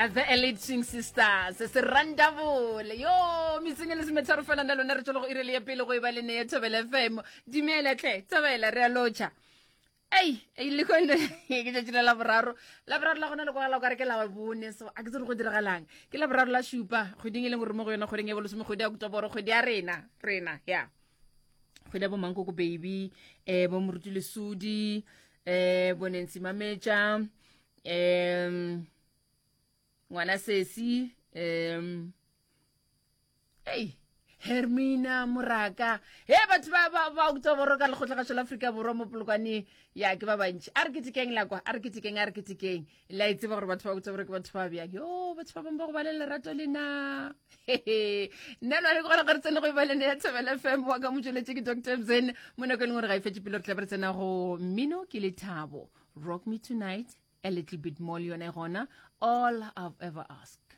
as the elite swing sisters se randabole yo metseng e le semetharo fela nda lona re tšologo e rele ya pele go e ba le ne ya thobela fm dumela tle thobela re a lotšha ei e le kone ke tšatši la laboraro laboraro la gona le kwagala kare ke la bone so a ke tsere go diragalang ke laboraro la šupa kgweding e leng gore mo go yone kgweding e bolosome kgwedi ya kutoboro kgwedi ya rena rena ya kgwedi ya bomankoko baby um bo moruti lesudi eh bonentsi mametša um ngwana sesi um ei hermina moraka he batho ba ba ba utswa boro ka lekgotla ga tšhola afrika borwa mo polokwane ya ke ba bantši a re ketekeng la kwa a re ketekeng a re ketekeng la e tseba gore batho ba botsa gore ke batho ba bjang yo batho ba bangwe ba go ba le lerato le na nna lwa le gona gore tsene go ibalene ya thabela fm wa ka motsweletše ke dr mzen mo nako e leng gore ga e fetse pele re tla ba re tsena go mmino ke lethabo rock me tonight a little bit more le yone gona all i've ever asked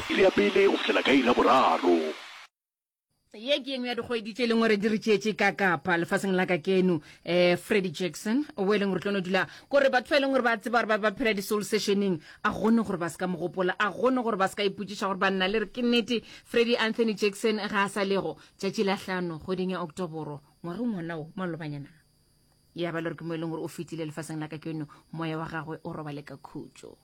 Iri ya pele go fihlela ka iri ya boraro. Ye ke engwe ya dikgwedi tše e leng gore di re tšeetše ka kapa lefaseng la ka keno. Um Freddie Jackson, wo e leng gore tlo no dula kore batho ba e leng gore ba tseba gore ba ba phela di-soul sessioneng, a gone gore ba se ka mo gopola, a gone gore ba se ka ipotšiša gore banna le re ke nnete Freddie Anthony Jackson ga a sa lego. Tšatši la hlano kgweding ya Oktoboro ngwageng wona wo, malobanyana ya ba le gore ke mo e leng gore o fetile lefaseng la ka keno, moya wa gagwe o robale ka khutšo.